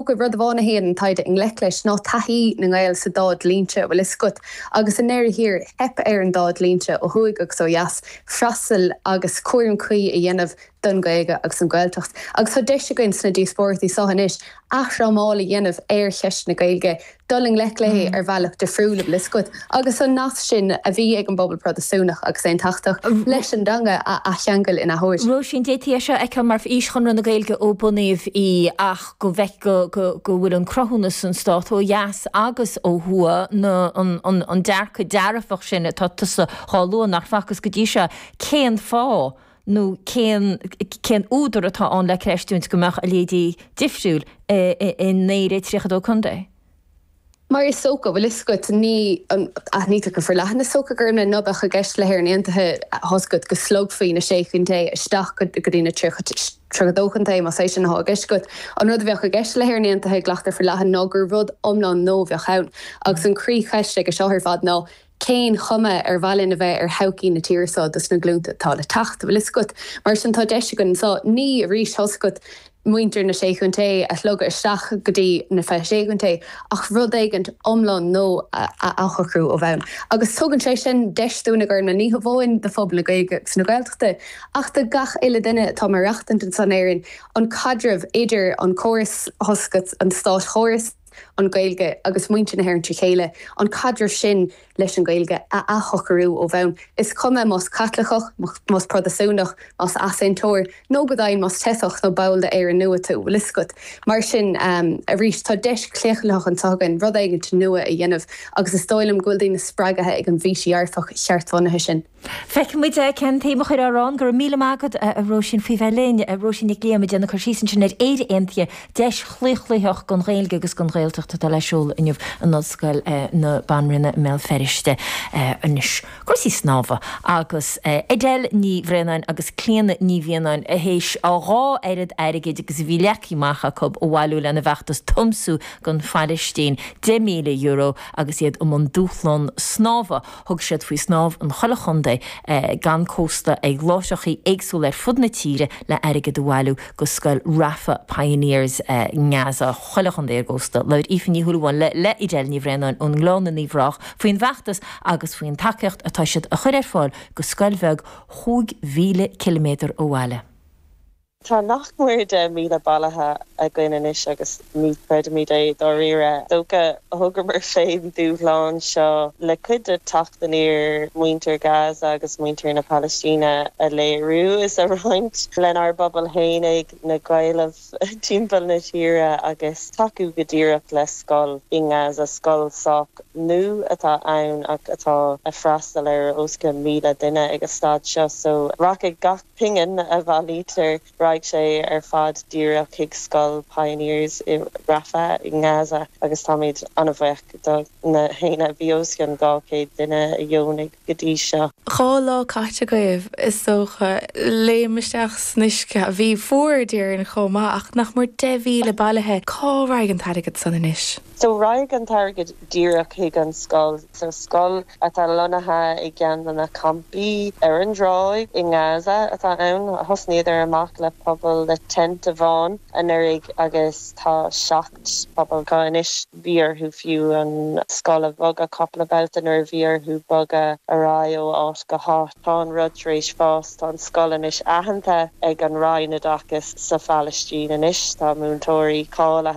Tuigfidh rud amháin a théann an taighde i ngleic leis ná taithí na nGael sa dá dhlínse bhfuil fhios agat, agus i ndeireadh thiar, theip ar an dá dhlínse, ó thuaidh agus ó dheas, freastal agus cúram cuí a dhéanamh don Ghaeilge agus don Ghaeltacht. Agus tá deis againn sna díospóireachtaí so anois athfhrámáil a dhéanamh ar cheist na Gaeilge, dul i ngleic léi ar bhealach difriúil bhfuil 'fhios agat, agus an nasc sin a bhí ag an bpobal Protastúnach agus Aontachtach leis an dteanga a athcheangal in athuair. Róisín Dé tá seo aici mar fhís Chonradh na Gaeilge ó bunaíodh í ach go bhfeice go bhfuil an cruthúnas san stát ó dheas agus ó thuaidh, an dearcadh dearfach sin atá tusa dhá lua, nach facthas go dtí seo, cén fáth nó cén cén údar atá ann le creistiúint go mbeadh a leithéidí difriúil in Éirinn 32 Contae? Mar is dócha, bhfuil 'fhios agat, ní an, aithnítear go forleathan, is dócha, gurb amhlaidh ná beadh i gceist le hÉirinn Aontaithe tá 'fhios agat go slogfaí na Sé Chontae isteach go dtí na 32 Chontae, más é sin atá i gceist agat. An rud a bheadh i gceist le hÉirinn Aontaithe, glactar forleathan, ná gur rud iomlán nua a bheadh ann. Agus an croí-cheist aige seo ar fad ná, cén chuma ar mhaith linn a bheith ar thodhchaí na tíre seo dos na glúnta atá le teacht? Bhfuil 'fhios agat. Mar sin, tá deis againn anseo, ní arís, tá 'fhios agat, muintir na Sé Chontae a shlogadh isteach go dtí na fiche Sé Chontae, ach rud éigint iomlán nua a athshocrú ó bhonn. Agus tugann sé sin deis dúinn a Ghormfhlaith, ní hamháin do phobal na Gaeilge agus na Gaeltachta, ach do gach uile duine atá ag maireachtaint anseo in Éirinn, an caidreamh idir an córas, tá 'fhios agat, an státchóras, an Ghaeilge agus muintir na hÉireann trí chéile, an caidreamh sin leis an Ghaeilge a athshocrú ó bhonn, is cuma más Caitliceach, más Protastúnach, más Easaontóir, nó go deimhin más teifeach nó ball d'Éirinn Nua tú. Bhfuil 'fhios agat, mar sin, arís, tá deis chlaochlaitheach anseo againn rud éigint nua a dhéanamh agus is dóigh liom go bhfuil daoine spreagaithe ag an bhfís dhearfach cheartbhunaithe sin. Feicfidh muid cén tsuim a chuirfear ann. Go raibh míle maith agat, a Róisín, faoi bheith linn. Róisín Nic Liam ag déanamh cur síos ansin ar Éire Aontaithe, deis chlaochlaitheach don Ghaeilge agus don Ghaeltacht atá le seoladh inniu in Ollscoil na Banríona i mBéal Feirste. Anois, cúrsaí snámha agus Edel Ní Bhraonáin agus Clíona Ní Mhianáin théis dhá oiread airgid agus a bhí leagtha amach acu a bhailiú lena bhfeachtas 'Tiomsú don Phalaistín', €10,000, agus iad i mbun dúshlán snámha. Thug siad faoi snámh in chuile chontae gan cósta ag láithreachaí éagsúla ar fud na tíre le airgead a bhailiú go scoil Rafah Pioneers i nGaza. Chuile chontae ar an gcósta. Labhair Aoife Ní Shúilleabháin le Edel Ní Bhraonáin ón nGleann in Uíbh Ráthach faoin bhfeachtas agus faoin tacaíocht atá siad a chur ar fáil go scoil bheag chúig mhíle ciliméadar ó bhaile. Tá nach mór deich míle bailithe againn anois agus ní chreidimid é, dáiríre. Is dócha, thógamar féin dúshlán seo le cuid de, teacht aniar muintir Gaza agus muintir na Palaistíne a léiriú is a roinnt lenár bpobal fhéinig, na Gaeil timpeall na tíre, agus tacú go díreach le scoil i nGaza, scoil sách nú atá ann ach atá a' freastal ar os cionn míle duine ag a' staid seo so raghaidh gach. pingin a bhailítear, raghaidh sé ar fad díreach chuig scoil Pioneers i Rafah i nGaza agus táimid an-bhaoch do na héinne, bhí os cionn 200 duine a dheonaigh go dtí seo. Dhá lá caite agaibh, is dócha. Léim isteach san uisce. a bhí fuar, a déarfainn, chomh maith. Ach nach mór 10,000 bailithe. Cá raghaidh an t-airgead san anois? So raghaidh an t-airgead díreach chuig an scoil, sa scoil atá lonnaithe i gceann de na campaí ar an dtráigh i nGaza atá ann. Thosnaíodar amach le puball le tent amháin anuraidh agus tá seacht bpuball acu anois. Bhí orthu fiú an scoil a bhogadh cúpla babhta nuair a bhí orthu bogadh ar aghaidh ó áit go háit. Tá an rud tar éis fás, tá an scoil anois aitheanta ag an Roinn Oideachais sa Phalaistín anois, tá múinteoirí cáilithe,